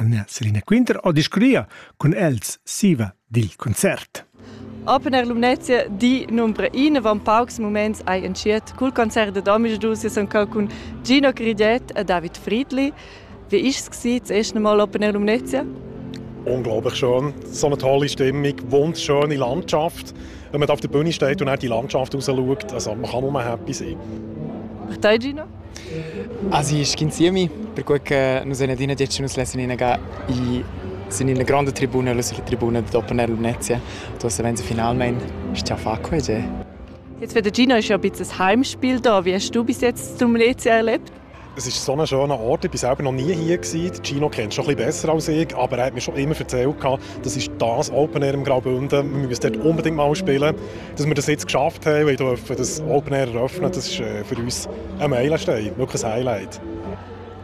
Anna Selina Quinter ha discurria cun els siva dil concert. Open Air Lumnezia di numbre in van paucs moments ai entschiet cul concert dad omisdus ja son cun Gino Cridet e David Friedli. Wie ist es das erste Mal Open Air Lumnezia? Unglaublich schön. So eine tolle Stimmung, wunderschöne Landschaft. Wenn man auf der Bühne steht und auch die Landschaft rausschaut, also man kann nur happy sein. Martei, Gino? Asi sc'insiemi, perquei che nus ein adina detg che nus lessan inaga i sin ina gronda tribuna lu sulla tribuna dad Opener Lumnezia. Du hast wenn sie finalmein sta fa quei ge. Jetzt für den Gino ist ja ein bisschen Heimspiel da. Wie hast du bis jetzt zum Lumnezia erlebt? Es ist so ein schöner Ort. Ich war selber noch nie hier. Gino kennst du schon ein bisschen besser als ich, aber er hat mir schon immer erzählt, das ist das Open Air im Graubünden. Wir müssen dort unbedingt mal spielen. dass wir das jetzt geschafft haben, weil dürfen das Open-Air eröffnen, das ist äh, für uns ein Meilenstein, wirklich ein Highlight.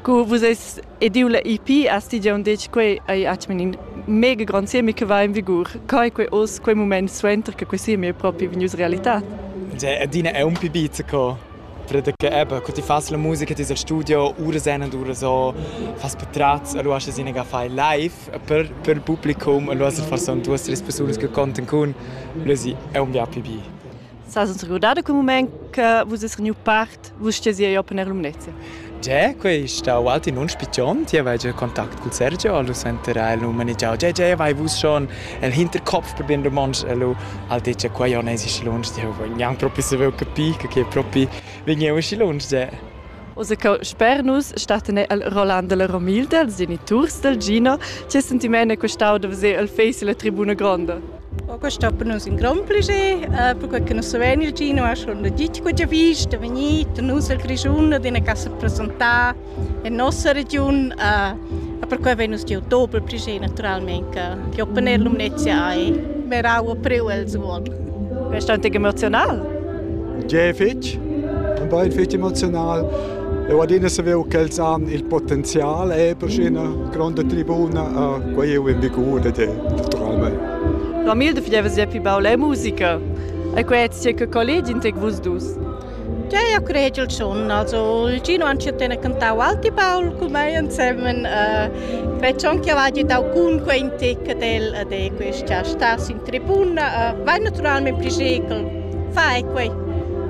Cu vus eis ediu la IP a sti già un dec quei ei atmen in mega grand semi che va in vigur. Kai quei os quei moment suenter che quei semi è proprio venius realità. Adina è un pibiz co Creda che eben, cu ti fas la musica, ti sei al studio, uras en ed uras o, fas patratgs, e lu has ina ga fai live. Per, per il publicum, e lu hast forsa duas, tres persunas che contan cun, lu si è un bia pli bi. Sas uns regurdada quel moment che vus eis vegniu part, vus stesi ei open er lumnezia? Già quei stau alti nun spichond, jeu vai giu contact cul Sergio, lu senter el nu manegiau, Già, già, vai vus schon. El hinterkopf per bien romontsch e lu al detg, quei on esi schi lunsch, jeu vogl gnanc propi saver capir, che che propi vegneu schi lunsch già. Ussa co sper nus stattan el Roland della Romilde, els geniturs del Gino. Che sentiment è questau da veser el face illa tribuna gronda? Oca stoppan nus in grond plascher, äh, perque che nus savein ir gino a schon da ditg quella vista, vegnir tar nus al Grischun ad ina casa presentar en nossa regiun. Äh, e perquai vein nus giu doppel plascher naturalment che, che opponer lumnezia hai. Wir auch april als wohl. Bist du emotional? Sehr fitch. Und bin fitch emotional. Eu adina saveu ch'els han il potenzial e per üna gronda tribuna a quai eu in vigur ed è naturalmaing. Ramil de fidevas ja pli baul e musica. E quai es sia che colleg in tec vus dus. Ja, eu cred il schon. Also, il Gino han tene cantau Alti Paul cun mei insemen. Uh, Credi anche che vada dau cun quei tec del de questa stas in tribuna. Uh, vai naturalmente prigeicel Fai quei!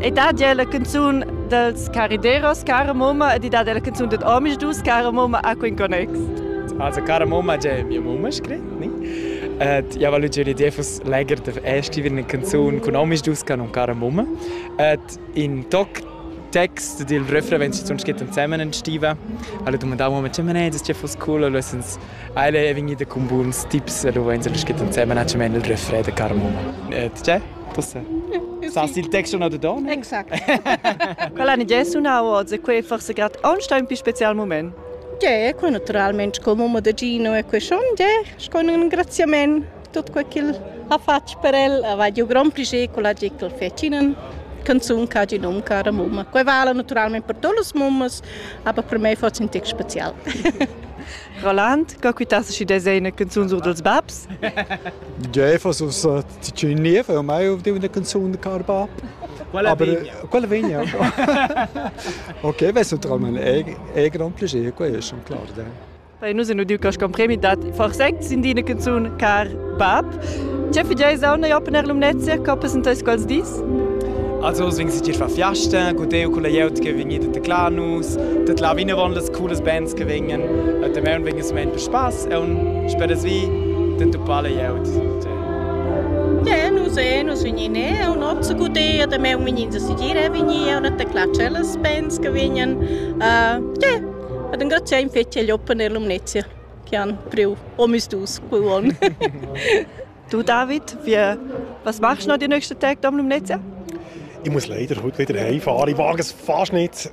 E dat la canzun dels carideros, cara mamma, e di dat la canzun ded homis dus, cara mamma, a quin connex? Also, cara mamma, già mia mamma scrit, ni? Et ja voglio dire, l'idea fosse leger de scrivere una canzone con homis dus, che non cara mamma. Et in toc text del refrain, wenn sie sonst geht zusammen entstive. Alle domandavamo, ma ma ne, das ist ja fast cool, allora sens alle vegni da con buons tips, allora wenn sie geht zusammen, c'è il refrain de cara mamma. Et c'è? Sas il text una de donna? Exact. Quella ni è sunau oz e quei forse grad aunsta un pi special moment. Ge, quei naturalmente come un modaggino e quei schon, ge, con un ringraziamento tutto quello che ha fatto per el, aveva un gran piacere con la gente che fecinen canzone che ha di nome cara mamma. Quei vale naturalmente per todas as mammas, aber per me fosse un text special. Roland, co quittas si desena canzun sur dels babs? Ge, fosse uns Ti c'è in lev, ormai ho deu una canzun da car bab. Quella Aber vegna. äh, quella vegna. okay, weißt du, traum ein eh, eh grand piacere, quello è schon klar. Dai. Dai, nu se nu diu ca scon premi dat forsect sin dina canzun car bab. C'è figiai sauna ja per l'umnezia, ca presentais quals dis? Also es wings dir fa Fiasten, gut eu culla jeut che vegnida de Clanus, dat là vine von las cooles bands che vengen, et de mern wings mein per spaß e un spedes vi den tu pale jeut. Gie, nus ein, nus vegnin eau nozza guder, damaun vegnin a sedir e vegnir, eau net aclà tschellas pens che vegnan. Uh, gie, ed engraziar in fetg agl open e l'umnezia che han priu omisdus quei uonn. du David, wie, was machst du noch die nächsten Tage am Lumnezia? Ich muss leider heute wieder heimfahren. Ich wage es fast nicht.